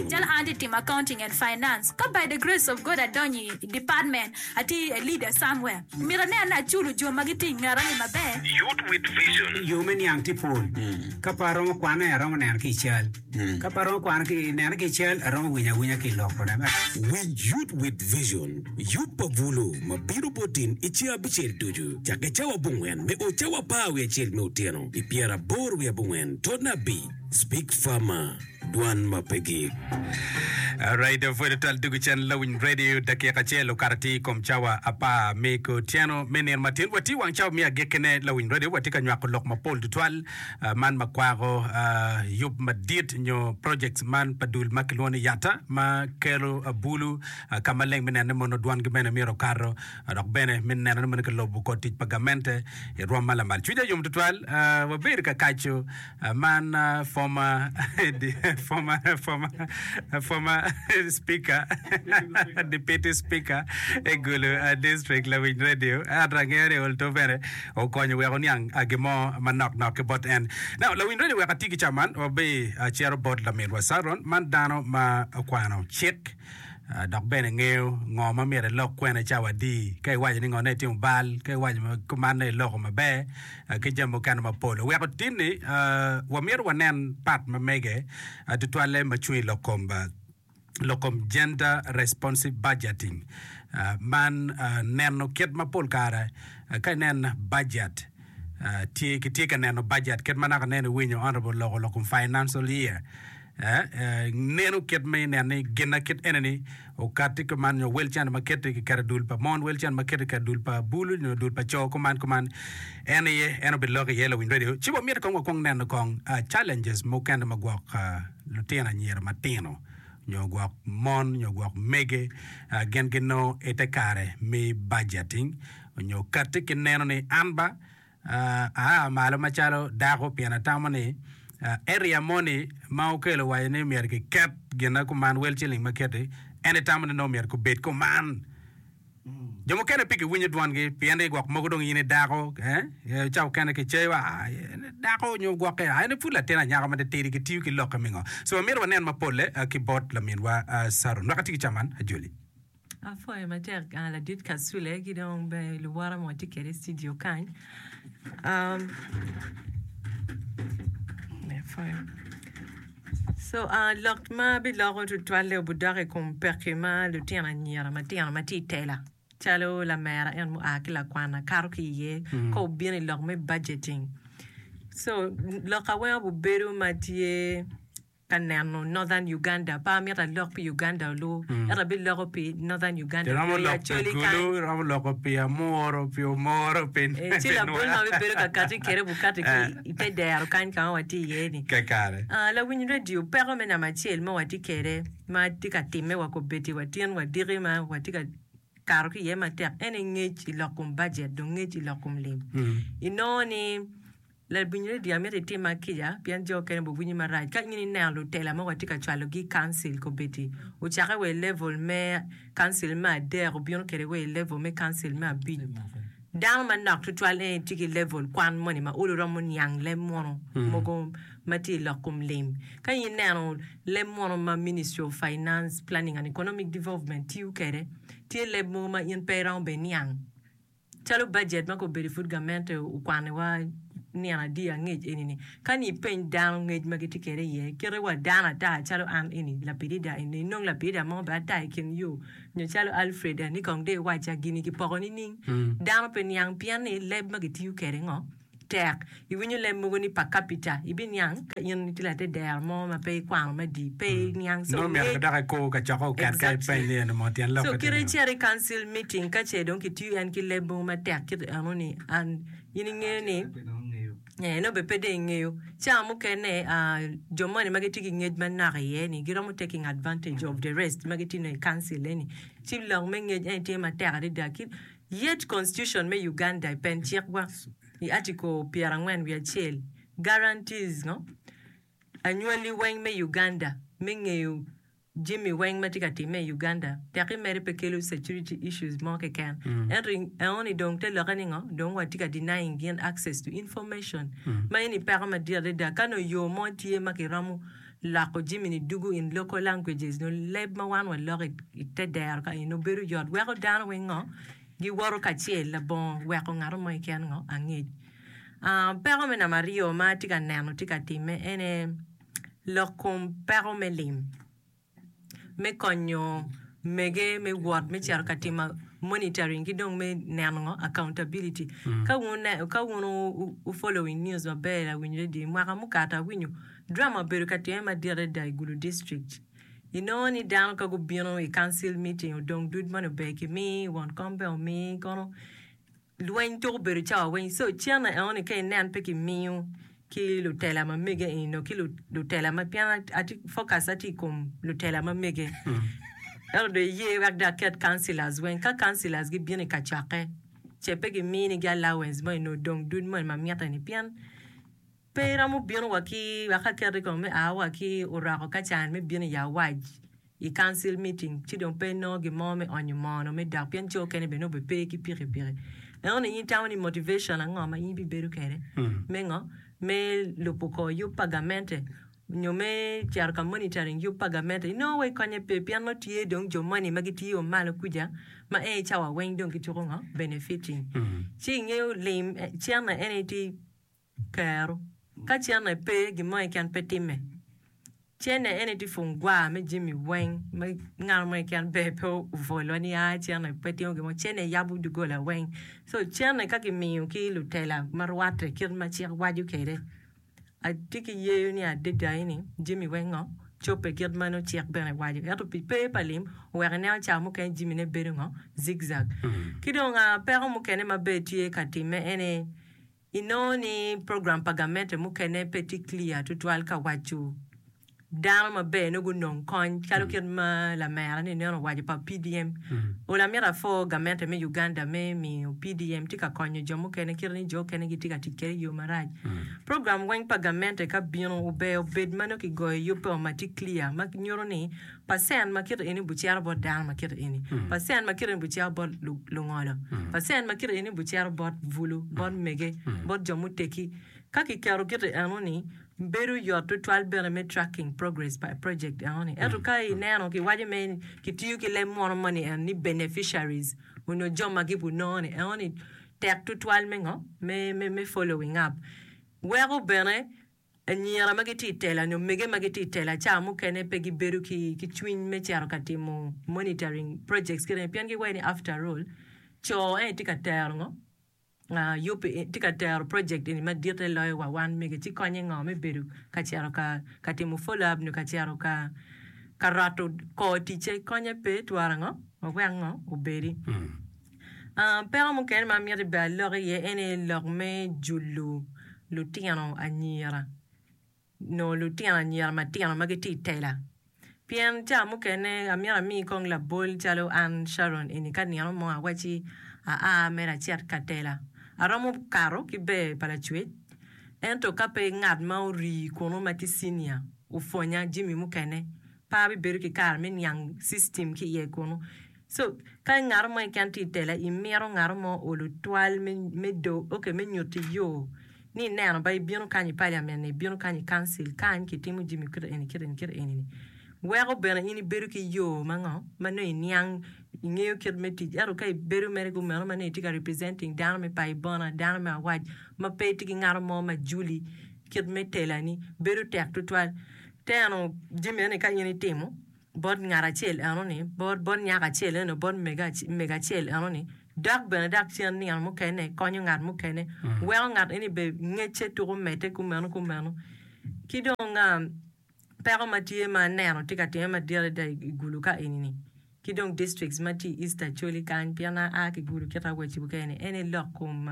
Calo an atye timo Accounting and Finance, ka by the grace of God adonyo i department, atye i a leader somewhere, myero aneno ni aculo jo ma gitye i ngeta ni maber. Yo me niang tye pol. Ka pe aromo kwane, aromo neno ki i cal. Ka pe aromo kwano ki neno ki i cal, aromo winyo awinya ki i lokone. Winj Youth with Vision, Yub pa Bulu ma bino bot tim i ceng abicel ducu, cakke cawa abongwen me o cawa apar wiye acel me otyeno, pi pyeraboro wiye abongwen, totne abi. Speak farmer, dwan ma pe gik. Alright, dong pwod twal dwogo cen lawiny radio dakika acel okato atir i kom cawa apar me kutyeno me nino matin. Watye wang cawa me agekkine lawiny radio, watye ka nywako lok mapol tutwal ah, man ma kwako ah, yub madit nyo projects man pa dul ma kilwongo ni Yatta ma kelo ah, bulu ah, ka maleng me neno ni mono dwangi bene myero okato ah, dok bene me neno ni mono kilobo kor tic pa gamente i rwom ma lamal. Cwinya yom tutwal, ah, wabedo ka kaco Man former speaker deputy speaker e Gulu district lawic radio ento angeyo ni Olto bene okonyo wek oniang gin mo manok nok ki bot en. Now lawic radio wek atye ki caman wabi acito bot laminwa Saron man dano ma okwano cik Dok bene ngeyo ngo ma myero elok kwene cawa adi, ka iwaco ni ngone itimo bal, ka iwaco ma kumanne iloko maber, ki jami mukene mapol. Oweko tinni wamyero wanen part ma mege tutwalle ma cung i lok kom lok kom Gender Responsive Budgeting. Man neno kit ma pol kare ka inen bajet tye kitye ka neno bajet kit ma naka nen iwinyo honorable loko lok kom financial year Nenu kit ma inen ni ginna kit ene-ni okatti kuman, nyo wel cene ma kette kiketo i dul pa mon, wel cene ma kette kiketo i dul pa bulu nyo dul pa co kuman kuman, en aye en obiloko iye lawiny radio. Ci wamiti kong wakwong neno kong challenges mukene ma gwok lutino anyira matino nyo gwok mon nyo gwok mege gin ginongo ite kare me budgeting nyo katti ki neno ni an ba Aa malo macalo dako pien atamo ni area moni ma okelo waco ni myero kiket gina kuman, wel ciling ma kiti, en itamo ni nongo myero gubed kuman. Jo mukene pe giwinyo dwongi pien ni gwok mogo dong in i dako, eh, ca okene kiceyo, aa, en i dako nyo gwokke, aa, en i pud latin anyaka ma titidi, gitiyo ki lokke me ngo? So myero wanen mapolle ki bot laminwa Saron. Naka tye ki caman, Ajoli? Apwoyo matek ladit Kasule ki dong bene luwota ma watye kwede i cidio kany. Lok ma abiloko tutwalle obidok i kom pekki ma lutino anyira matino ma tye i tela calo lamera en mua ki lakwanna kato ki iye ka obino i lok me budgeting. Lok ma weko bibedo ma tye. Ka neno Northern Uganda pe amito alok pi Uganda olu ento abiloko pi Northern Uganda Iromo pi lok pi Acholi Gulu, kany. iromo lok pi Amuru, pi Omoro, pi Ee, ci labol ma Nwera. abibedo ka kati kwede bukati ki i te dero kany ka ma watye iye-ni. Kakare. Ah, lawiny redio, peko me namba acel ma watye kwede ma tye ka timme wa kobedi wa tyen wadiki ma watye ka kato ki iye matek en aye ngec i lok kom bajet dong ngec i lok kom lim. Inongo ni Ladwinyi Lydia mito itim ma kica pien jo okene obbe winyi marac ka in ineno lutela mogo atye ka cwalo gi i council kobedi ocake wa i level me council me adek obino kede wa i level me council me abic dano manok twatwal en itye ki level kwan moni ma ulu romo niang leb munu mogo ma tye ilok kom lim ka in ineno leb munu ma ministry of finance planning and economic development tiyo kede tye leb mogo ma in pe iromo bene niang Calo bajet ma kobedo pud gamente okwaniwa nino adi angec eni-ni, ka ni ipeny dano ngec ma gitye kwede iye, kite wa dano ata calo an eni lapidida eni, inongo lapidida mo bene ata i kin yo, nyo calo Alfred Anikong dong iwacca gini kipoko nining? Dano pe niang pien ni leb ma gitiyo kwede ngo? Tek iwinyo leb mogo ni pa kapita, ibiniang ka in itye later dero mo ma pe ikwano me dii, pe iniang. So, Nongo omyero dok ikur kacokko oket ka ipeny ni eno mo tyen lok So, kit icito i council meeting ka ce dong kitiyo en ki leb mogo matek kit eno ni, and in ingeyo ni, ee, nongo bene pe dong ingeyo. Ca mukene, aa, jo moni ma gitye ki ngec manok iye ni, giromo taking advantage of the rest ma gitye nongo i council eni, ci lok me ngec en aye tye matek adada. Ki. Yet Constitution me Uganda i pen cikwa i Article pyerangwen wiye acel guarantees ngo? anywali weng me Uganda me ngeyo jami weng ma tye ka timme i Uganda tek i mere pe kelo security issues mo keken ento i eno ni dong te lokke ni ngo? dong wa tye ka denying gin access to information ma eni peko madit adada ka nongo yo mo tye ma ki romo Loko jami-ni dugu in local languages nyo leb ma wan waloko i te dero ka eno bedo yot weko dano weng ngo giwoto kacel labongo weko ngato mo keken ngo angec. Peko me namba aryo ma atye ka neno tye ka timme ene lok kom peko me lim. me konyo mege me wot me cito ka timo monitoring ki dong me neno ngo accountability ka wun wu following news maber awinyo adada i mwaka mukato awinyo drama obedo ka time madit adada i gulu district inongo ni dano ka gubino i council meeting odong dud moni ober ki mi won kom bene omi kono Lweny tuko bedo cawa weng, so cen aye enoni ka inen pe ki miyo ki lutela ma mege eni nongo ki lutela ma pien atye focus atye ikom lutela ma mege ento dong iye wek dong aket councilors weng ka councilors gi bino ika cokke ce pe gi mini gi allowance moni nongo dong dud moni ma mitte ni pien Pe iromo bino wa ki wek aket ikome me aa wa ki oroko ka can me bino i awac i council meeting ci dong pe inongo gin mo me onyo moo onongo me dak pien coo kene bene nongo be pe ki piki piki eno ni in itamo ni motivation ango ma in ibibedo kede me ngo me lubo kor yub pa gamente nyo me cito ka monitoring yub pa gamente inongo wa ikonye pe pien nongo tye dong jo moni ma gi tiyo malo kuca ma en cawa weng dong gituko ngo benefiting ci ingeyo lim cen na en aye tye Kero. Ka cene aye pe, gin mo keken pe timme. Cene ene tye pung gwar me jami weng ma ngat mo keken ber pe obwolwa ni a cene pe timo gin mo. Cene yabo doggola weng. So cene ka kimiyo ki lutela ma rwatte kit ma cik waco kwede, atye ki yeyo ni adada ini jami weng ngo cobbe kit ma nongo cik bene waco. Ento pi pe pa lim oweko ineno ca mukene jamine bedo ngo, zigzag. Ki dong peko mukene ma bene tye ka timme ene Inongo ni program pa gamente mukene pe tye clear tutwal ka waco dano maber nongo gunong kony calo kit ma lamera ni nen owaco pa PDM. Ola myero apho gamente me Uganda me miyo PDM tye ka konyo jo mukene kit ni jo okene gitye ka tic kwede i yo marac. Program weng pa gamente ka bino ober obed ma nongo kigoyo yub pe wa ma tye clear ma nyuto ni Pacent ma kite eni bucito bot dano ma kite eni, pacent ma kite eni bucito bot lungolo, pacent ma kite eni bucito bot bulu, bot mege, bot jo muteggi. Ka kiketo kite eno-ni, bedo yot tutwal bene me tracking progress pa project eno-ni. Ento ka ineno, kiwaco me kitiyo ki leb munu moni eno ni beneficiaries onyo jo ma gibunongo-ni eno-ni, tek tutwal me ngo? me following up. Weko bene. Anyira ma gitye i tela nyo omege ma gitye i tela ca mukene pe gibedo ki ki cwiny me cito ka timo monitoring projects kine pien giwaco ni after all co eni tye ka tero ngo aa yub eni tye ka tero project eni madite loyo wa wan mege ci konye ngo me bedo ka cito ka ka timo follow up nyo ka cito ka ka roto kor ticce konye pe twara ngo wek ango obedi. Peko mukene ma miti bed alok iye ene lok me julu lutino anyira nyo lutino anyira matino ma gitye i tela pien cawa mukene amyero ami kong labol calo an Sharon eni ka nino mo awaci aa mere acit ka tela aromo kato ki ber pa lacwec ento ka pe ngat ma ori kunu ma tye cinia opwonya jami mukene pe abibedo ki kare me niang cictim ki iye kunu Cuk. Ka in ngato mo keken tye i tela, imito ngato mo olu twal me me nyuti yo ni ineno ba ibino kany i paliamen ni ibino kany i kancil kany ki timo jimi kit eni kit eni kit eni ni weko bene in ibedo ki yo ma ngo ma nongo iniang ingeyo kit me tic ento ka ibedo mere ku meno ma nongo itye ka representing dano me payi bona dano me awac ma pe itye ki ngato mo ma juli kit me tela ni bedo tek tutwal teno jimi eni ka in itimo bot ngat acel enoni, bot nyako acel enoni, bot mego acel enoni, dok bene dak cen nino mukene konyo ngat mukene, weko ngat eni bene ngecce tuku medde kumeno kumeno. Ki dong peko ma tye ma aneno tye ka timme madit adada i Gulu ka eni-ni ki dong districts ma tye i East Acholi kany pien an aa ki Gulu kita West Bukene en aye lok kom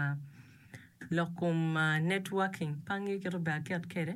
lok kom networking pe angeyo kit ma obedo aket kwede.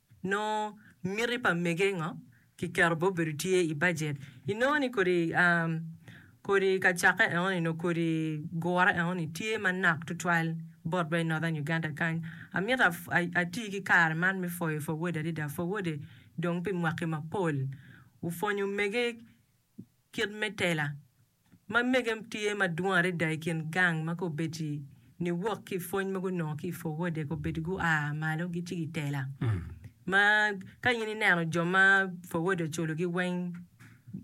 Nongo miti pa mege ngo kiketo bene obedo tye i bajet. Inongo ni kodi kodi ka cake eno ni nongo kodi gure eno ni tye manak twatwal bot wa i Northern Uganda kany. Amito ati ki kare man me pwoyo Forward adada. Forward dong pi mwaki mapol opwonyo mege. Kit me tela ma mege tye madwong adada i kin gang ma kobedi ni wok ki i pwony ma gunongo ki i Forwode kobedi gua malo gici gitela. Ma ka in ineno jo ma Forwode oculogi weng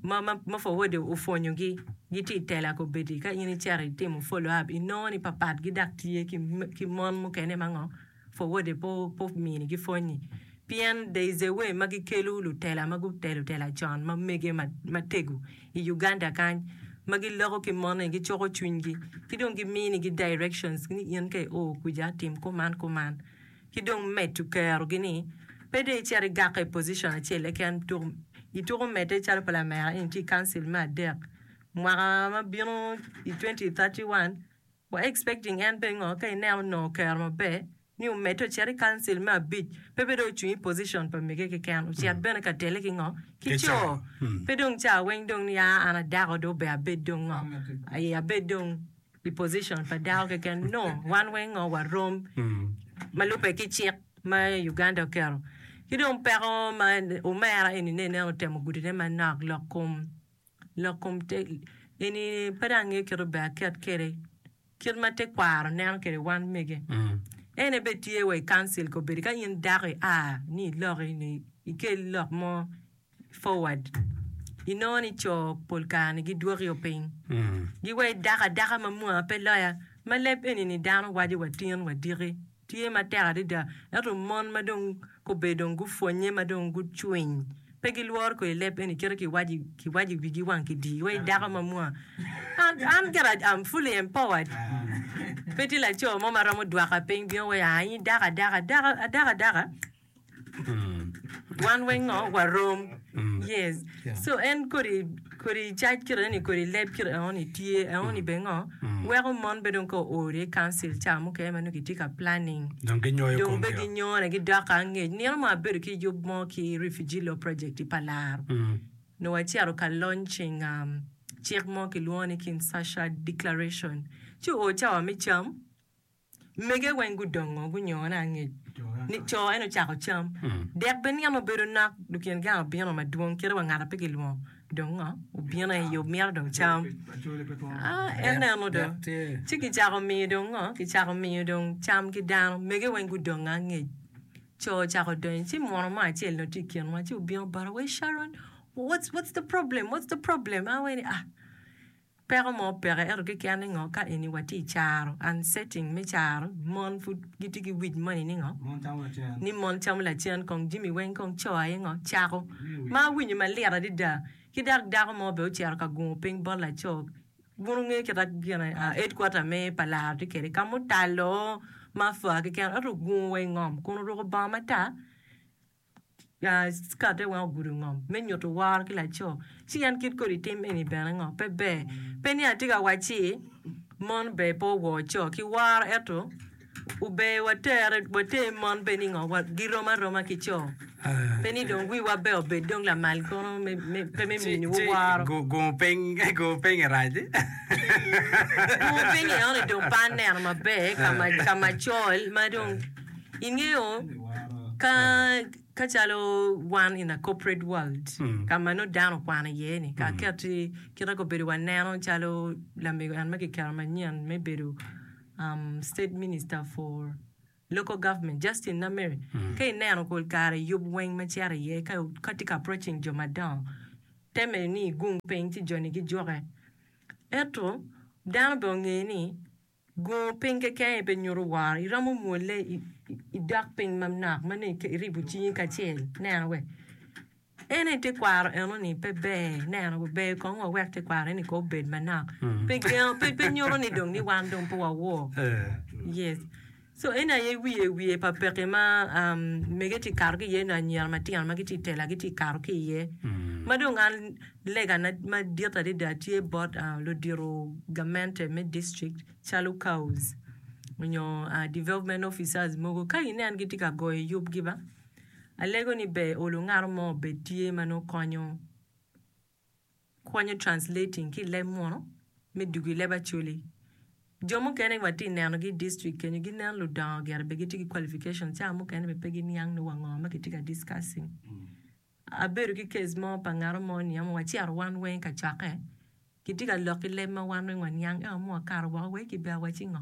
ma ma ma Forwode opwonyogi gitye i tela kobedi ka in icito itimo follow up inongo ni papatgi dok tye ki ki mon mukene ma ngo Forward-de pe ominigi pwony-nyi, pien there is a way ma gikelo lutela ma gutelo tela con ma mege matego i Uganda kany ma giloko ki moni, gicoko cwinygi ki dong giminigi directions ni in ka i o kwica tim kuman kuman ki dong medo kerogi ni pe dong icit igak i position acel keken tuk ituko medde calo pa lamera eni tye i Council me adek mwaka ma bino i twenty thirty one. Wa expecting en pingo ka ineno onongo kero maber ni omedde ocit i council me abic pe pe dong ocung i position pa mege keken ocit bene ka tele ki ngo ki co pe dong ca weng dong ni aa an adako dong ober abed dong ngo aye abed dong i position pa dako keken no wan weng ngo wa rom ma lube ki cik ma Uganda oketo ki dong peko ma omera eni ne ineno otemo gudi ne manok lok kom Lok kom tegi eni pe dong angeyo kit ober aket kwede kit ma tekwaro neno kwede wan mege. En aye bene tye wa i council ka obedo ka in dako ia ni iloki ni ikel lok mo forward inongo ni co pol kare ni gidwoki o piny giwayi dako adaka ma mwaa pe loya ma leb eni ni dano waco wa tin wa diki. Tye matek adada, ento mon ma dong kobbe dong gupwonnye ma dong gucwiny, pe gilworo kodi leb eni kit ma kiwaco i wigi wang ki dii wai dako ma mwa. An kit a am fully empowered. Pe tye laco mo ma romo dwaka piny bino waco aa in idako adaka, adako adaka. Wan weng ngo warom yes so en kodi kodi cac kite eno ni kodi leb kite eno ni tye eno ni bene ngo weko mon bene dong ka oo i council ca mukene ma nongo kitye ka planning dong ginyoyo dong be komgi-o. ginyoyo ne gidoko angec nino mo abedo ki yub mo ki refugee law project i palar nongo wacito ka launching um, cik mo kilwongo ni Kinshasa declaration ci oo cawa me cam Mege weng gudongo gunyone angec ni co, en ocako cam. Dek bene nino obedo nok, dok tyen gang obino madwong, kite wa ngata pe gilwongo. Dong ngo? Obino i yo mito dong cam. Aa, ineno dong. Ci kicako miyo dong ngo? Kicako miyo dong cam ki dano. Mege weng gudongo angec. Co ocako donyo, ci muno mo acel nongo tye i kinwa, ci obino bota, Wee Sharon, what's, what's the problem, what's the problem? Awaci ni, Ah. Peko mo peke ento kiken ningo ka eni wa tye icaro and setting me caro mon pud gitye ki wic moni ningo ni mon camo lacen kong jimi weng kong coo aye ngo cako ma awinyo malit adada ki dok dako mo bene ocito ka gungo ping bot laco wun wunge kita gine headquarter me pa laro tye kede kama otalo ma afwa keken ento ogungo wa ingom kun oruko bongo matar. Kate weng ogudo ngom me nyuto woro ki laco, ci en kit kodi tim eni bene ngo? Pe ber. Pe ni atye ka wac ci mon ber pe owor co ki woro ento ober water water mon bed ni ngo girom aroma ki co pe ni dong wiwa ber obed dong lamal kono pe me miniwu woro. Ci gungo piny gungo piny i rac. Gungo piny enoni dong pe aneno maber ka macol ma dong. Ingeyo ka ka calo wan in a corporate world ka ma nongo dano okwano iye ni ka aketi kit ma obedo waneno calo lamego en ma kiketo manyen me bedo um state minister for local government Justin Namer ka ineno pol kare yub weng ma cito iye ka ka tye ka approaching jo madongo te mere ni igung piny ci joni gijuke ento dano bene onge ni Go piny kekeni pe nyuto woro. Iromo mwole i dok piny manok ma nongo iribo cingi kacel neno wek en aye tekwaro enoni pe ber neno wa ber kong wawek tekwaro eni kong obed manok pe nyuto ni dong ni wan dong pe wawor yes So en aye wiye wiye pa peke ma mege tye kato ki iye nyo anyira matino ma gitye tela gitye kato ki iye. Ma dong an lega na madit adada tye bot ludito gamente me district calo cows nyo development officers mogo ka inen gitye ka goyo yub gi ba alego ni ber olu ngato mo obed tye ma nongo konyo. Kwanyo, translating, ki i leb muno me dugo i leb Acholi. Jo mukene wa tye neno gi i district kenyo gi nen ludongo gire be gitye ki qualification cawa mukene be pe gi niang ni wa ngo ma kitye ka discussing. Abedo ki case mo pa ngato mo ni ama wa cito wan weng ka cokke kitye ka lok ki leb ma wan weng wa niang ento mua kato woko wai ki bea wa ci ngo.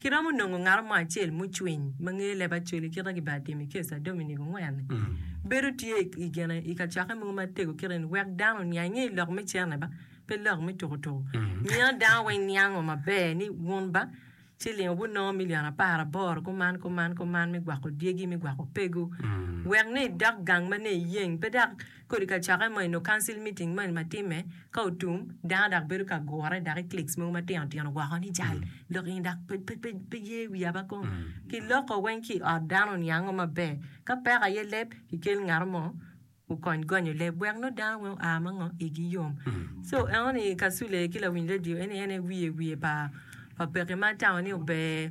Kiromo nongo ngaro mo acel mucwiny ma ngeye leb acoli kit ma kibaa timo i kesa Dominic Ongwen-ni. Bedo tye i gene i kacokke mogo ma tego kit eni wek dano oniang ni lok me cene ba pe lok me tuku tuku. Mino dano weng niango maber ni wun ba ciling obut nongo milion apar aboro kuman kuman kuman me gwako dyegi me gwako pegu wek ni idok gang ma ne iyeng pe dok Kodi ka cakke moni nongo council meeting moni ma timme ka otum, dano dok bedo ka gure dok i cliques mogo matino tino woko ni jal lok eni dok pe ye wiya ba kong. Ki loko weng ki i ot dano ni ango maber. Ka peko aye leb, ki kel ngato mo okony gonyo leb wek nongo dano weng oa ma ngo igi yom. So eno ni kasule ki lawiny radio eni en aye wiye wiye pa peke ma atamo ni ober.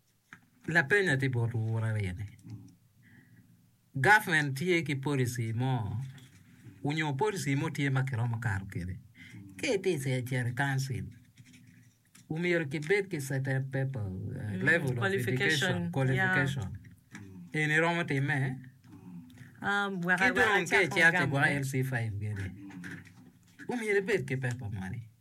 Lapeny atye bot wu aryo ni, government tye ki policy mo onyo policy mo tye ma kiromo kato kwede ka itye cito i council omyero kibed ki certain paper level of education qualification eni iromo time ki dong ka icito cigwok LC5 gini omyero ibed ki paper moni.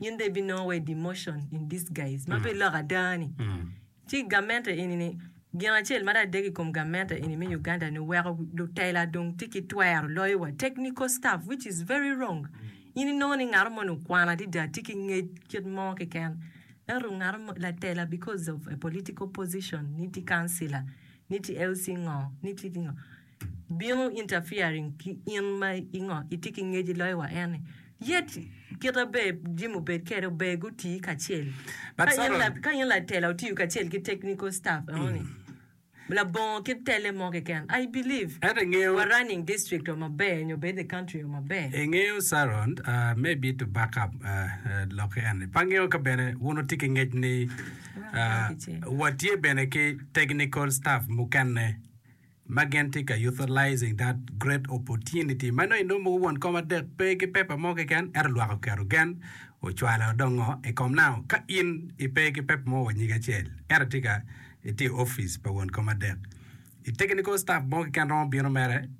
In dong ibinongo wa i demotion in disguise ma pe iloko ada ni. Ci gamente eni ni gin acel ma adek i kom gamente eni me Uganda ni weko lutela dong tye ki twero loyo wa technical staff which is very wrong. In inongo ni ngato moni okwano adada tye ki ngec kit mo keken ento ngato mo latela because of a political position ni tye councilor ni tye LC ngo ni tye ki ngo. bino interfering ki in ma i ngo itye ki ngec iloyo wa en ni yet kite ber jami obed kede ober guti kacel But ka in Saron- la- ka in latela otiyo kacel ki technical staff enoni labongo ki tele mo keken I believe Ento ingeyo wa running district o maber nyo bed the country o maber ingeyo Saron ah, maybe to back up ah, ah, lok en ni pe angeyo ka bene wun wutye ki ngec ni ah, watye bene ki technical staff mukene ma gin tye ka utilizing that great opportunity ma nongo inongo mogo won kom adek pe ki paper mo keken ento lwak oketo gen ocwalo dong ngo i kom now ka in i pe ki paper mo wa nyig acel ento itye ka itye i office pa won kom adek i technical staff mo keken romo bino mere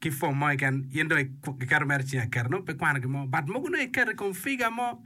ki form mo keken in dong iketo mere cing aketa nongo pe kwano gin mo but mogo nongo iketo i kom figure mo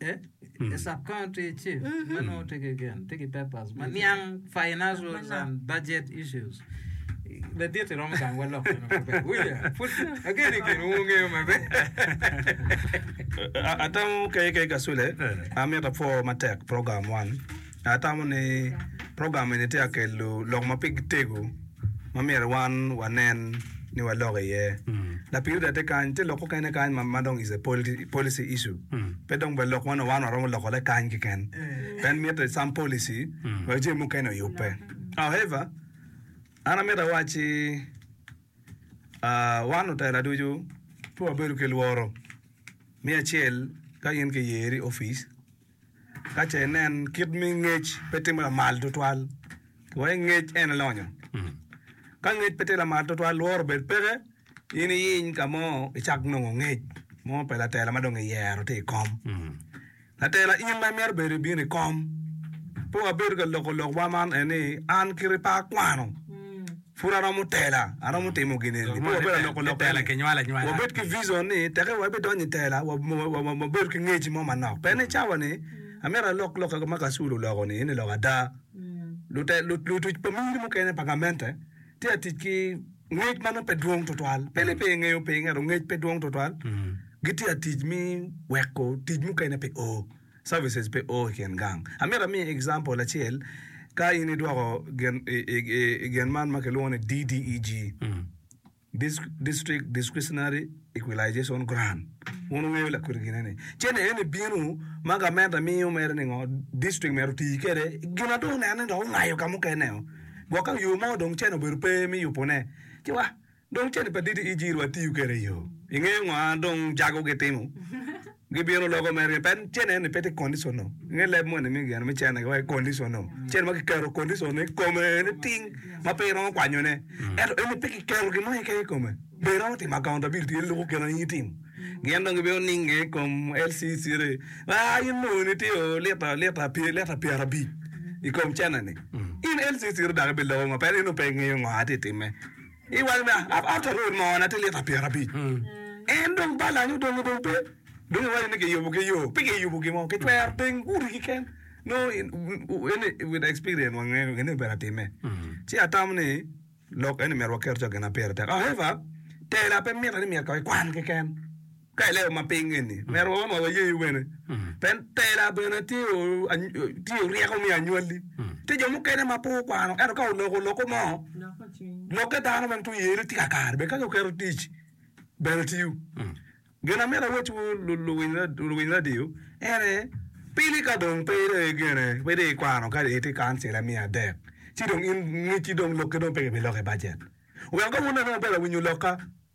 A sub-county chief ma nongo tye ki gin, tye ki papers ma niang financials and budget issues. Ladit iromo gang walok meno maber. Wulya, put ageno i gin wungeyo maber. Atamo KK Kasule, amito apwo matek program man. Atamo ni program eni tye ka kelo lok ma pe gitego ma myero wan wanen ni walok iye. Lapiny Rita tye kany, tye lok mukene kany ma dong is a policy issue. Pe dong ber lok meno wan waromo loko le kany keken. Pien mitte some policy wek jami mukene oyubbe. However, an amito awacci wan lutela ducu pe wabedo ki lworo. Me acel, ka in kiyeri i opic, Ka ce inen kit mi ngec pe timo lamal tutwal, wai ngec en lonyo. Ka ngec pe tye lamal tutwal, lworo bed peke in iyiny ka mo icak nongo ngec mo pa latela ma dong iyero tye i kom. Latela in ma imito bedo ibino i kom. Pe wabedo ka loko lokwa man en ni an kit pa akwano. Pud aromo tela, aromo timo gin eni. Pud wabedo alokolokone ni wabed ki vicion ni teke wa bidonyo i tela, wabedo ki ngec mo manok. Pien i cawa-ni, amito alok lokka ma Kasulu oloko-ni, ento eloko ada. Lutic pa miri mukene pa gamente tye ka tic ki ngec ma nongo pe dwong twatwal, pe ni pe engeyo piny ento ngec pe dwong twatwal, gitye ka tic me weko tic mukene pe o. Services pe o i kin gang. Amito amiyi example acel, ka in idwoko gin i gin man ma kilwongo ni DDEG, District Discretionary Equalization Grant. Wun wungeyo lakwiri gine ni. Cene eni bino ma gamente miyo mere ni ngo district myero oti kede. Gin ma dong oneno ni dong ongayo ka mukene o. Gwok ka yo mo dong cene obedo pe mi yubone. Ci wa. Dong cadi pa Didi Ijir wa tiyo kede iyo. Ingeyo ngo an dong jago gi timo. Gi bino loko me ryen pet cene ni peti conditional. Inge leb mo ni mi geno mi cene wa conditional. Cene ma kiketo conditional ni kome ni ting ma pe iromo kwanyo ne. Eto eni pe kiketo gin mo keken i kome. Be iromo timo accountability en loko keno ni itim. Gin dong gibino ninge i kom LCC ni aa in moo ni tye oo lita lita pye lita pyera abic i kom cene ni. In LCC ri dok ibi loko ngo pet in dong pe ingeyo ngo ati time. I wang me after road moo na tye lita pyerabic en dong balance odongo dong pe dong iwaco ni kiyubo ki yo pe kiyubo gin mo kicwero teng gudi kiken no with experience wa ngeyo gin ni obedo atime ci atamo ni lok eni myero waket co gin ma pire tek however tela pe mite ni myero ko ikwan kiken. Ka ileo ma piny eni, myero wa ma wayeyi bene. Pen tela bene tye tye ryeko me anywalli. Tye jo mukene ma pe gukwano, ento ka oloko loko mo, lokke dano bene tye yeyone tye kakare bene ka dong oketo tic bene tiyo. Gin amito awacci wu luwiny radio ene, pili ka dong pe idong i gene, pe idong i kwano kadi itye i kancila miya adek ci dong in ngecci dong lokke dong pe kibiloko i bajet. Wek ka wun bene wubelo awinyo lokka.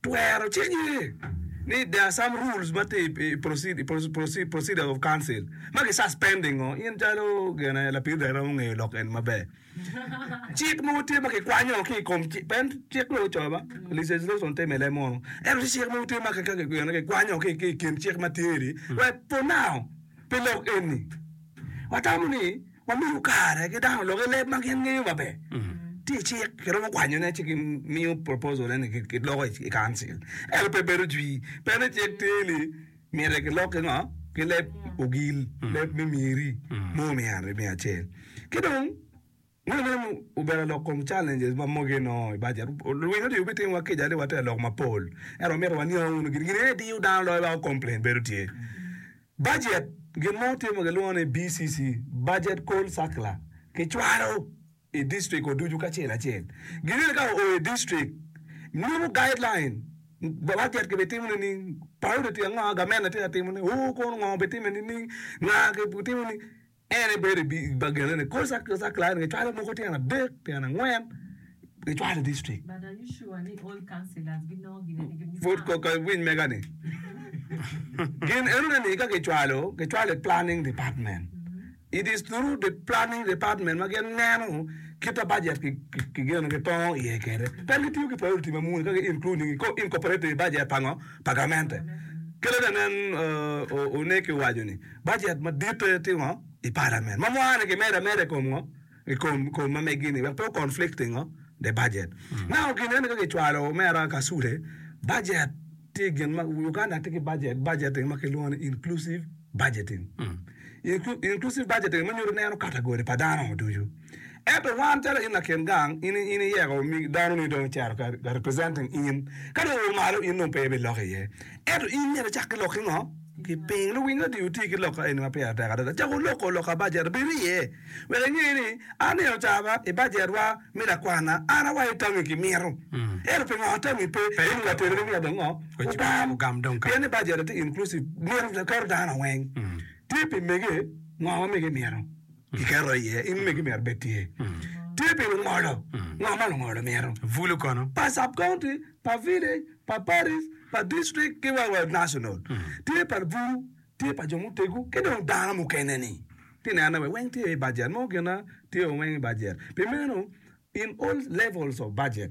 Twero cik ye ni there are some rules ma tye i procedure of council ma ki suspend i ngo? In calo gene lapid rer rom ongeyo lok eni maber. Cik mogo tye ma ki kwanyo ki i kom cik, pen cik lok co ba, legislation tye mele mono. Ento ci cik mogo tye ma ki kaki gene ki kwanyo ki ki i kin cik ma tye ni wek for now pi lok eni watamo ni ma miyo kare ki dano lok i leb ma gin ngeyo maber. Tye cik, kiromo kwanyone ci gimiyo proposal eni kiloko i council. Ento pe bedo jwi, pe ni cik tye ni myero kilok ki ngo? Ki leb ogil, leb me myeri, mo miya aryo, miya acel. Ki dong, ma meno obedo lok kom challenges ma mogo inongo i bajet. Luwiny odye gubitiyowa kica ni water lok mapol, ento wamito waniang wunu gin, gin aye diyo dano loyo ba ku complain bedo tye. Bajet, Gin ma watye ma kilwongo ni BCC, Bajet Call Circular, kicwalo i district-wa ducu kacel acel. Gin eni ka oo i district, nyuto guideline, bajet kibitimo nining, paudi tye ango, gamente tye ka timone, oo kono ngo bitime nining, nga gitimo nining. En ebedo i bagenene kor circular eni kacwalo mogo tyen adek, tyen angwen kicwalo i district. Pud koka iwiny mega-ni. Gin enoni ni ka kicwalo, kicwalo i planning department. It is through the planning department ma gin neno kita budget ki- ki- kigeno kitongo iye kede. Pien gitiyo ki priority ma muni ka gi including i ko- incorporate i budget pango pagamente. Kelo ne nen uh, o- Oneki owaco ni. Bajet maditte tye ngo i palament ma mwani ki medo ameda i kom ngo i kom kom ma megi ni wek pe o conflict ki ngo de bajet. Now gin eni ka ki cwalo mera kasule bajet tye gin ma Uganda tye ki bajet budgeting ma ki lwongo ni inclusive budgeting. Inclusive budgeting ma nyuto neno category pa dano ducu. Ento wan calo in lakin gang, in, in iyeko omigi, danoni dong ocito ka, ka representing in. Ka dong owo malo, in dong pe ibi lok iye. Ento in myero icak ki lok ki ngo? Ki piny. Luwiny adi wuti ki lok kaeni ma pire tek adada? Cak wuloko lok ka bajet obedi iye, wek inge ni, An ni ocaba i bajetwa me lakwana, an awaco ni tangi ki mito. Ento pingo tangi pe? Kaeni wa teri ni myero dong ngo? Wugam. Wugam dong ka. Pien ni bajet-ti tye inclusive, mito, keto dano weng. Tye pi mege, ngo ma mege mito. Kiketo iye, in megi myero bed tye. Tye pi lungolo, ngo ma lungolo mito? Bulu kono. Pa sub county, pa village, pa parish, pa district ki wa wa national. Tye pa bulu, tye pa jo mutegu ki dong dano mukene ni. Ti nene wek weng tye i budget mo gina tye weng i budget. Pi meno in all levels of budget.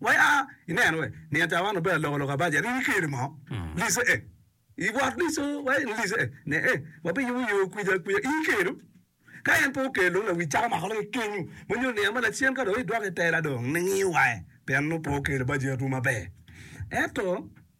Waya, ineno we ni atawana obedo alokaloka baja ni ni keri mo lice e i bot lico waya ni lice e ne e wa bi yubu yo kwica kwica i kelu ka en pe okel dong lawic caka mako lake kenyu ma nyo niya ma lacen ka dong idwoko i tela dong ningi waye pien nongo pe okelo bajet wu maber ento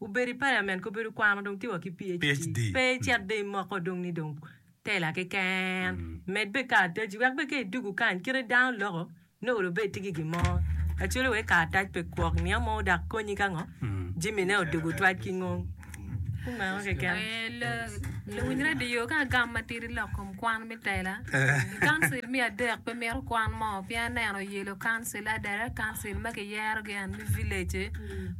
Gubedo i paliament, gubedo kwano dong tye wa ki PHD. Pe icit dong imoko dong ni dong teller keken. Med bene karataci wek bene ka idugu kany kite dano loko nongo dong bene itye ki gin mo. Acholi wek karatac pe kwok niang mo dok konyi ka ngo jamine odugu twaj ki ngo. Ku meno keken. Luwiny radio ka agam matidi lok kom kwan me teller. I council me adek pe mito kwan mo pien aneno yelo council a direct council ma kiyero gi and me village-ci.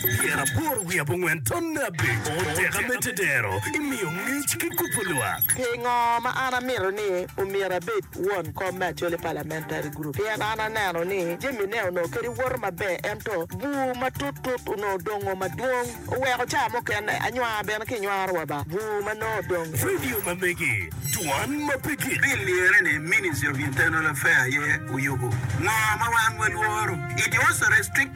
Tyen aboro wiye abongwen tonne abic, oteka me tedero, imiyo ngec ki kubo lwak. Pingo ma an amito ni omyero abed won kom me Acholi Parliamentary Group? Pien an aneno ni jamine onongo kadi woto maber ento bur matut tut onongo dongo madwong oweko ca mukene anywar bene kinywaro wa ba bur ma nongo odong. Radio ma megi, Dwan ma pe gik. Pi lyere ni Ministry of Internal Affair aye oyubo ngo ma wan walworo? It was a restricted.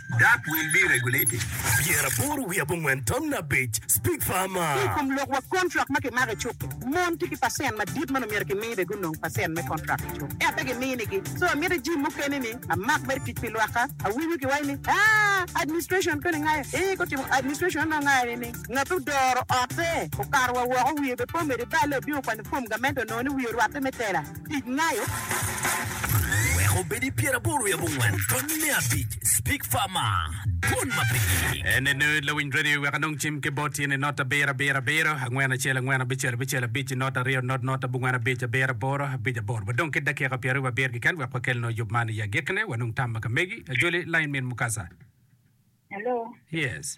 That will be regulated. Pyera aboro wiye abongwen tamna abic, Speak farmer. Ki i kom lok wa kontrak ma kimako i cuk-ki, mon tye ki pacent madit ma omyero kimi be gunong pacent me kontrak i cuk, ento pe giminigi. So amiti jim mukene ni amak mere tic pi lwakka. Awinyo ki waci ni, Aa, administration koni ngayo? Ee, gutimo administration onongo ngayo ni ni ngat odoro otte, okato wa woko, wiye be po mede balle, obino kwanyo fom gamente onongo ni wiye orwatte me tela. Tic nayo wek obed i pyer aboro i abongwen tony me abic speak far ma dwon ma pigi en ne nerd lawiny radio wek anong cim ki bot tyene not abiro abiro abiro angwen acel angwen abicel abicel abic not aryo not not abongwen abic abiro aboro abic aboro wadong ki dakika pyer aryo abiro keken wek wakel noo yub man i agikine wanong tam ma ka megi ajoli line min mukasa Hello. yes.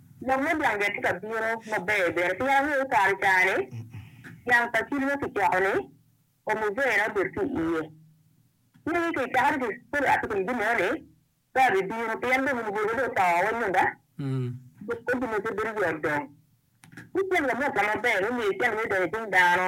Lok me dwangi atye ka bino maber bene pien angeyo ni kare caa-ni dyang pa cili ma kicoko-ni omuzena obedo ki iye. Ci angeyo ki icaka ni kore atye kun gin-nono ni pe abibino pien dong omuzena dong oto wa nyonga dok kodi mogo pe bedo yot dong. Ci cen wa mot wa maber me miyo cen-ni odonyo icing dano.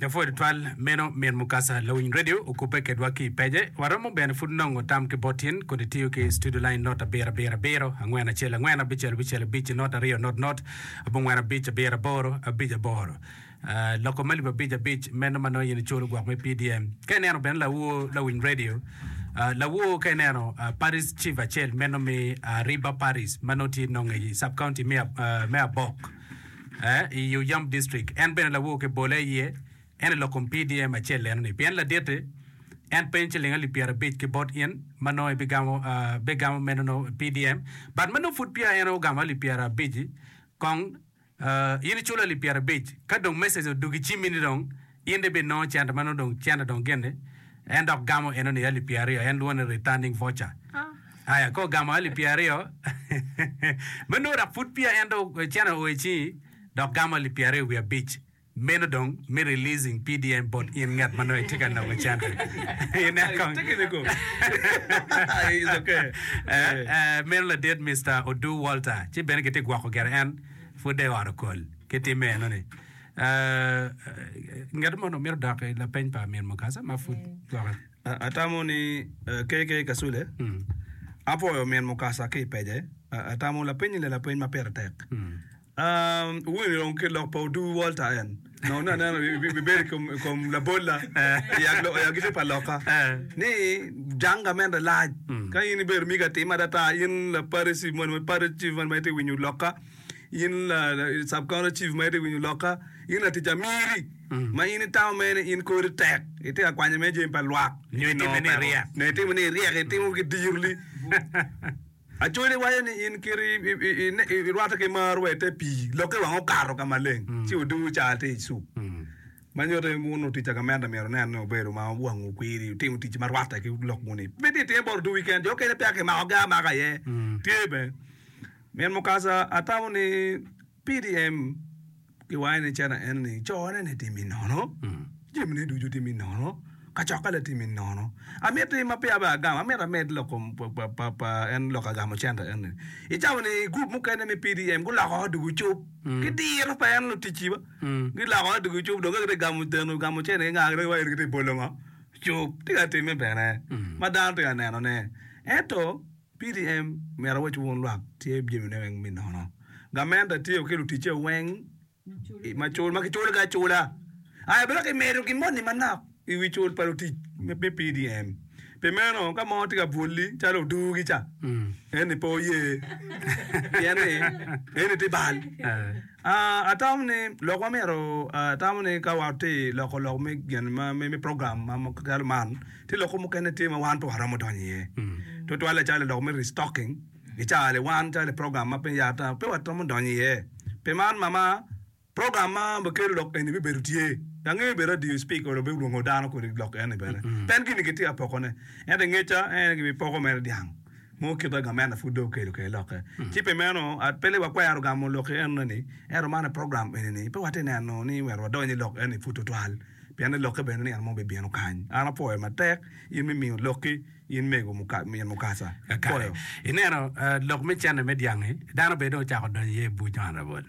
Mapwod tutwal meno min Mukasa lawiny radio okubbe kedwa ki i page. Waromo bene pud nongo tam ki bot tin kodi tiyo ki studio line not abiro abiro abiro, angwen acel angwen, abicel abicel abic, not aryo not not, abongwen abic abiro aboro, abic aboro. Ah, loko me lib abic abic meno ma nongo in iculo gwok me PDM. Ka ineno bene lawo lawiny radio, ah, lawo ka ineno ah, Paris Chief acel meno mi ah, Riba Paris ma nongo tye nongo i sub county me Ab- ah, me Abok. i Uiump District. En bene lawo ki bole aye en i lok kom PDM acel enoni. Pien laditi, en peny ciling alip pyerabic ki bot in ma nongo ibigamo, bigamo menono PDM. But ma nongo pud peya en ogamo alip pyerabic-ci, kong in iculo alip pyerabic. Ka dong message odug i cimmi ni dong In dong ibinongo cente ma nongo dong cente dong gin ni? En dok gamo eno ni alip pyeraryo, en lwongo ni returning voucher. Aya, ka ogamo alip pyeraryo, ma nongo dok pud peya en dong cente oo i cingi, dok gamo alip pyeraryo wiye abic, meno dong me releasing PDM bot in ngat ma nongo itye ka nongo cente. Inen kong. Meno ladit Mister Odu Walter, ci bene kitye gwoko gire en pud dong i ot okol ki timme eno ni. Ngat moni omito dok i lapeny pa Min Mukasa ma pud gwokke. Atamo ni KK Kasule, Apwoyo Min Mukasa ki i pece. Atamo lapenyi ni lapeny ma pire tek. Wun i rong ki lok pa Otubu Walter en, nongo ni aneno ibibedo i kom- i kom labolla i ag- i agiti pa lokka ni jang gamente lac. Ka in ibedo migi atima adada, in Laparici moni ma Parici moni ma itye winyo lokka, in sub counter chief ma ite winyo lokka, in latic amiri ma in itamo mene in kori tek itye ka kwanyo me jami pa lwak nyo itime ni iryek nyo itime ni iryek itimo ki diro li Acholi iwaco ni in kiri irwate ki mar wa ite pii lokke wang okato ka maleng ci oduwu ca tye i cuk ma nyuto ni wun otica gamente myero nen ni obedo ma wangu kwiri itimo tic ma rwate ki lok moni pe tye itime bot oduwi keken jo okene peya kimako gi amaka aye tye bene Min Mukasa atamo ni PDM giwange ni cene en ni cone ni timi nono, jami ne ducu timi nono, kacokke le timi nono. Amit ni ma peya be agamo, amit amed loko pa, pa, pa en loko agamo center en ni. Itamo ni group mukene me PDM guloko ot dugu cup, ki diro pa en luticci ba. Giloko ot dugu cup, dong ka gitye gamo teno, gamo cene inga gitye wa en gitye bolo ngo. Cup, tye ka timme bene, ma dano tye ka nenone. Ento. PDM omyero owec wun lwak tye jamine weng me nono. Gament atyeko ki luticce weng macul ma kiculo ki acula. Aye abino ki medo gin moni manok i wi cul pa lutic me PDM. Pi meno ka mo tye ka bwolli calo oduu gi ca, eni pe oye pien ni eni tye bal. Ah, atamo ni lok ma myero atamo ni ka watye loko lok me gin ma me program ma calo man, Tye lok mukene tye ma wan pe waromo donyo iye twatwal acalo lok me restocking i caa-ni. Wan calo program ma piny yata pe waromo donyo iye. Pi man, mama, program ma bikelo lok eni bibedo tye. Angeyo bedo adier Speaker onongo bene olwongo dano kodi lok eni bene. Pien gin-ni kitye ka pokone. Ento i ngeca, en aye gibipoko mere dyang. Nongo kite gamente pud dong okelo kede lokke. Ci pi meno, pe ni wakwero gamo lok i enoni, ento man aye program enini pe watye neno ni myero wadony i lok enoni pud twatwal, pien ni lokke bene ni en mo bibino kany. An apwoyo matek in me miyo lokki in mego Min Mukasa. Kakato ineno lok me cente me dyang-ngi, dano bene dong ocako donyo iye i buc man labol.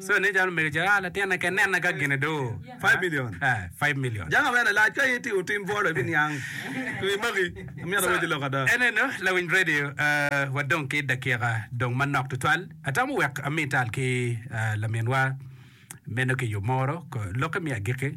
So ne calo omege Gerard latinne keken nene ka gine do five million eh five million. Janga me lalac ka in itimo tim bwolo ibi niang wi magi amito aweci lok ada. Eneno lawiny radio eh wadong ki dakika dong manok tutwal atamo wek ami tal ki eh laminwa meno ki yo moro ko lokke me agiki.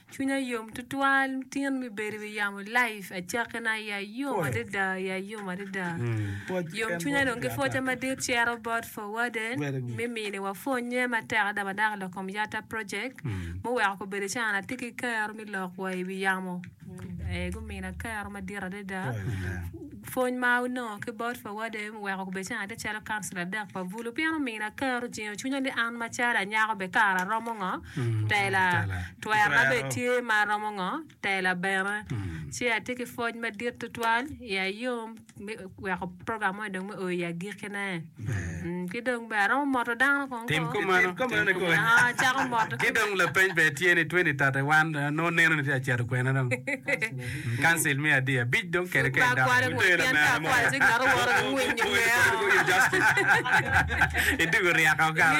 Cwinya yom tutwal tin me bedo i wi yamo live acakki na ya yom adada ya yom adada yom cwinya dong ki pwoca madit cito bot for warden me mini wa pwonye matek adada ma dako lok kom yata project muweko ko bedo calo an atye ki kero me lok wa i wi yamo ee gumina kero madit adada. Pwony ma onongo ki bot pa wade oweko okubecen ate calo kansila dek pa Bulu pien omiyo na ker ojingo cwinya ni an macalo anyako be kara aromo ngo tela, twero na be tye ma aromo ngo tela bene. Ci atye ki pwoc madit tutwal, iya yom me weko program moni dong me oo i agikine. Tim kumeno. Ki dong lapeny bene tye ni, 2031 nongo neno ni tye ka cito kwene dong? Council me adi abic dong kede kede dok. Idugo ryeka okalo.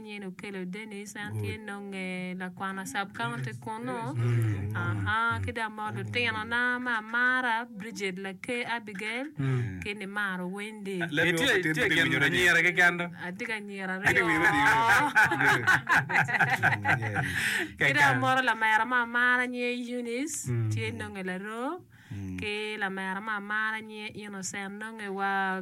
nyen okelo Dennis en tye nonge lakwano sub county kunu aahaa ki dong ma lutino na ma amara Bridget laker Abigail ki ni maro Wendy itye gin anyira keken do atye ki anyira aryo ki dong amoro lamera ma amara nyinge Eunice tye nonge laroo ki lamera ma amara nyinge Innocent nonge wa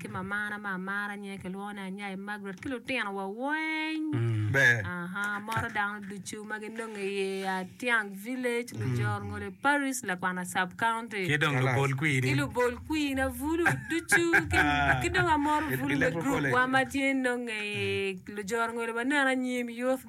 ki mamana ma amara nyinge kilwongo ni Anyai Margaret ki lutino wa weng moto dano ducu ma ginonge i ye Atiang village Lujor ngole parish Lakwana sub county ki dong lubol kwir ki lubol kwir na bulu ducu ki dong amoto bulu me group wa ma tye nonge i Lujor ngole ma neno anyim youth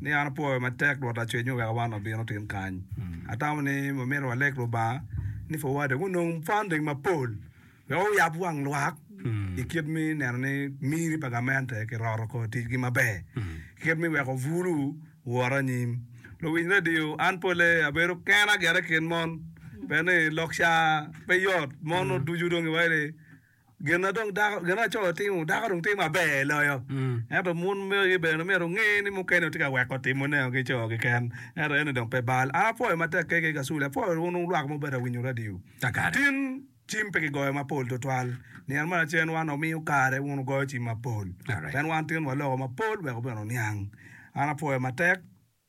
ni an apwoyo matek Rwot Lacwecwu wek awan wabino tin kany. Atamo ni wamito walek Lubanga ni pud wade gunong funding mapol wek wuyab wang lwak i kit me neno ni miri pa gamente kiroto kor ticgi maber ki kit me weko bulu wot anyim. Luwiny radio, an polle abedo kena gire i kin mon. Pe ni lok ca pe yot, mon oducu dong giwaco ni, Gin ma dong dako, gin ma laco timo, dako dong timo maber loyo. Ento mon magi bene myero onge ni mukene gitye ka weko timo neo ki co keken. Ento eno dong pe bal. An apwoyo matek keke ka Sule, apwoyo wun lwak ma wubedo ka winyo radio. Tin cim pe kigoyo mapol tutwal. Nino ma lacen wan wamiyo kare wun wugoyo cim mapol. Pien wan tin waloko mapol wek wubin wuniang. An apwoyo matek.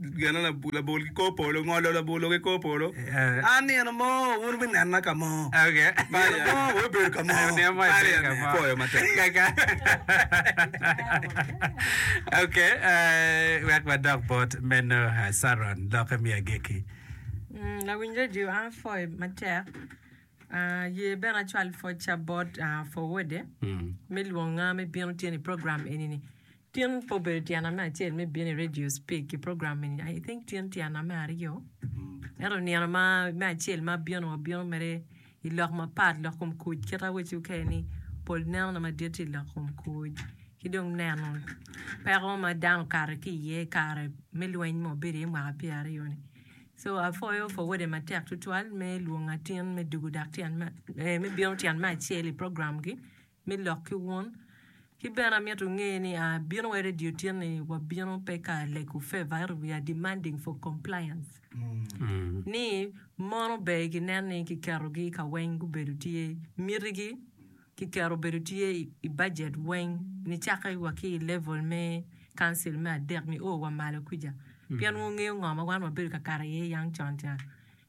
geno labol ki kor polo, ngolo labolo ki kor polo. An nino mo wun wunena ka mo, nino mo wubedo ka mo. Apoyo matek. Ok, wek wadok bot meno Saron, lokke me agikki. Lawiny redio, an apoyo matek. Aye bene acwal pwocca bot forwode me lwonga me bino tyeni i program eni-ni. Tin pe obedo tyena me acel me bino i radio speak i program eni I think tin tyena me aryo ento nino ma me acel ma abino wa bino mere i lok mapat lok kom kuc kit awaci wu kene ni pol neno na madit tye i lok kom kuc ki dong neno peko ma dano okato ki iye i kare me lweny ma wabedo iye mwaka pyera aryo ni so apwoyo Fowode matek tutwal me lwongo atin me dugu dak tyen me bino tyen me acel i program gi me lok ki wun. Ki bene amito nge ni a bino wa radio tyen ni wa bino pe ka lego favor ento we are demanding for compliance ni mon ober ki nen ni ki keto gi ka weng gubedo tye miti gi ki keto obedo tye i budget weng ni cake wa ki i level me council me adek ni o wa malo kwica pien wu ngeyo ngo ma wan wa bedo ka kato iye yang con ca.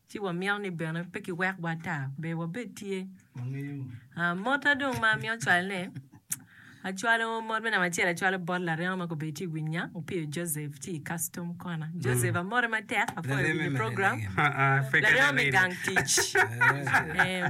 ci wamito ni bene pe kiwekwa ata ber wabed tye. Mota dong ma amito cwalone, acwalo mot me namba acel acwalo bot larengo ma kobedo tye i winya Opiyo Joseph tye i custom kona. Joseph amote matek apwoyo winyo program. Larengo me gang tic. Eh.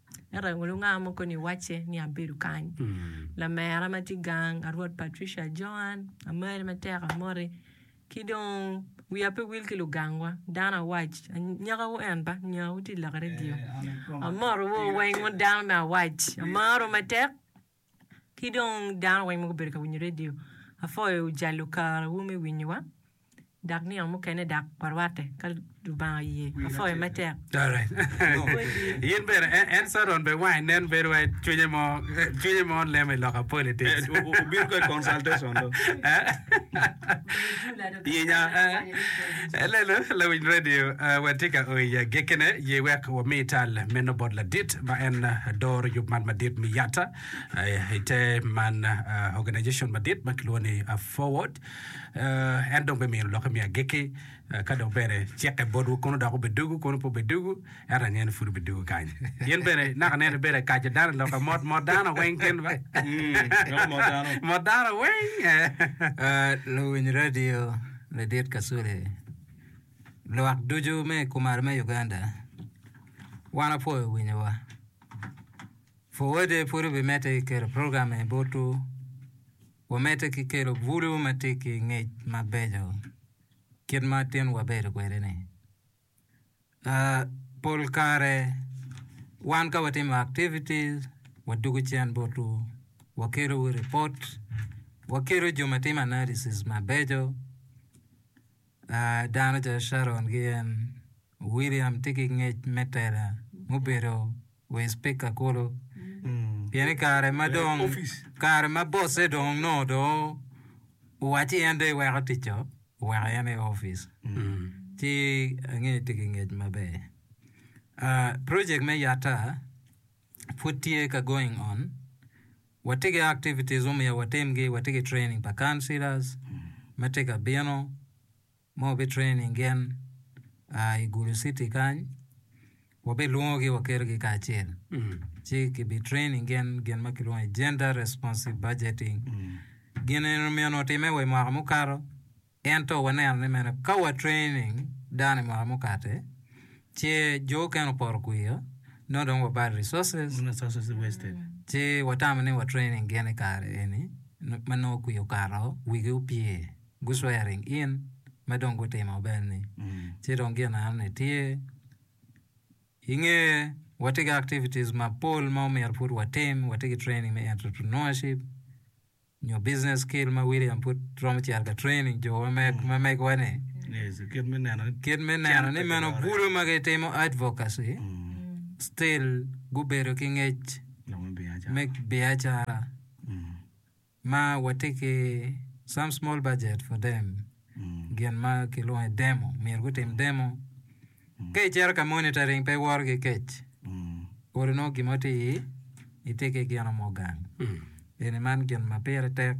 Ento aye lunganga mo koni wacce ni abedo kany. Lamera ma tye gang a Rwot Patricia Joan, amari matek amoti, ki dong wiya pe wil ki lugangwa, dano awac, anyakawu en ba, anyakawu tye i lak redio. Amotowu weng wun dano me awac, amaro matek, ki dong dano weng ma gubedo ka winyo radio. Apwoyo jalo kare wu me winyo wa dok nino mukene dok wa rwate ka lubanga oye. Apwoyo me tek. Alright. Yin bene en en Saron be wange nen bedo wai cwinye mo cwinye mo lemo i lok a politics. Obino kong consultation do. Pinya Lelo lawiny radio watye ka o i agekene ye wek wami tal meno bot ladit ma en doro yub man madit me yata i te man organization madit ma kilwongo ni Forward en dong bemino lokke me ageki Ka dong bene cikke botwu, kono dok obed dugu, kono pe obed dugu, ento angeyo ni pud obed dugu kany. Gin bene naka neno ni bedo akaco dano loka mot mot dano weng gin ba. Meno mot dano. Mot dano weng. Ah, luwiny radio ladit Kasule, lwak ducu me i kumalo me Uganda, wan apwoyo winyowa. Fuwode pud wubimedde ki kelo program eni botwu, wumedde ki kelo bulu ma tye ki ngec mabeco. Kit ma tin wabedo kwede ni uh pol kare wan ka watimo activities wadugo cen butu wakelo wa ripot wakelo jo ma timo analysis mabeco uh dano calo Sharon ki en William tye ki ngec me tela mubedo wa i spika kulu pien i kare ma dong kare ma bosse dong onongo dong owacci en dong iweko ticco oweko en i opic ci ange tye ki ngec maber project me yata pud tye ka going on watye ki activities mumiyo watimgi watye ki training pa councilors ma tye ka bino ma wabi training gin i Gulu city kany wabi lwongogi wakelogi kacel ci ki bi training gin gin ma kilwongo ni gender responsive budgeting gin eni omyeno watime wa i mwaka mukato ento waneno ni mene ka wa training dano i mwaka mukate ci jo okene oporo kwiyo no dong wabal resources ci watamo ni wa training gin i kare eni ma nongo kwiyo okato wigi opye. guswearing in ma dong gutimo bene ni ci dong gin eno ni tye inge watye ki activities mapol ma omyero pud watim watye ki training me entrepreneurship nyo business skill ma William pud romo cito ka training jo ma megowa ni kit me neno ni kit me neno ni meno bulu ma gitimo advocacy still gubedo ki ngec me biacara ma watye ki some small budget for them gin ma kilwongo ni demo myero gutim demo ka icito ka monitoring pe iworo ki kec pol onongo gin mo tye i itye ki gin mo gang eni man gin ma pire tek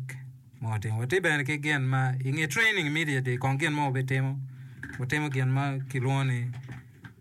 ma watimo watye bene ki gin ma inge training immediately kong gin mo wabitimo watimo gin ma kilwongo ni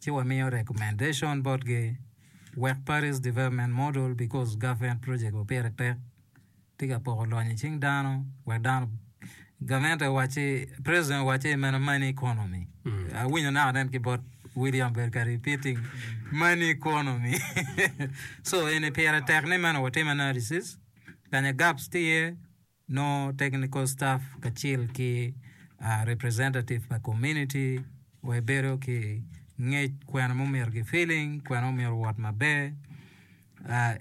ci wamiyo recommendation bot gi wek Paris development model because government project wa pire pek tye ka poko lony i cing dano wek dano government owacci president owacci meno money economy awinyo naka nen ki bot William ber ka repeating money economy so eni pire tek ni meno watime analysis kanya gaps tye iye nongo technical staff kacel ki representative pa community wa ebedo ki ngec kwena mumyero gi feeling kwena omyero owot maber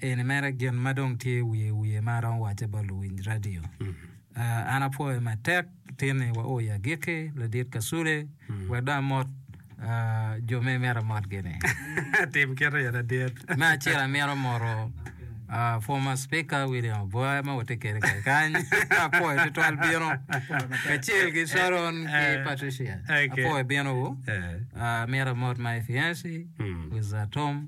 eni mere gin ma dong tye wiye wiye ma aromo wace bot luwiny radio an apwoyo matek tin ni wa o i agikki ladit kasule wek dong amot jo ma imito imot-gini. Tim kite in adit. Me acel amito moto uh, former speaker William Aboya ma watye kede kany kany apwoyo tutwal bino kacel ki Sharon ki eh. Patricia okay. apwoyo bino wu eh. uh, amito amot ma Efiansi mm. with uh, Tom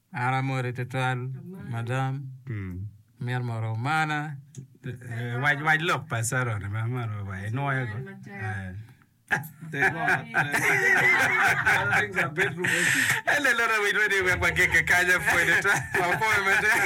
An amoti tutwal madam, amyero mor omana. Wac wac lok pa Caron ma maro wa inwoyo go. Elelora winy madi wek wagege kanya pwede twal. Wapoyo matek.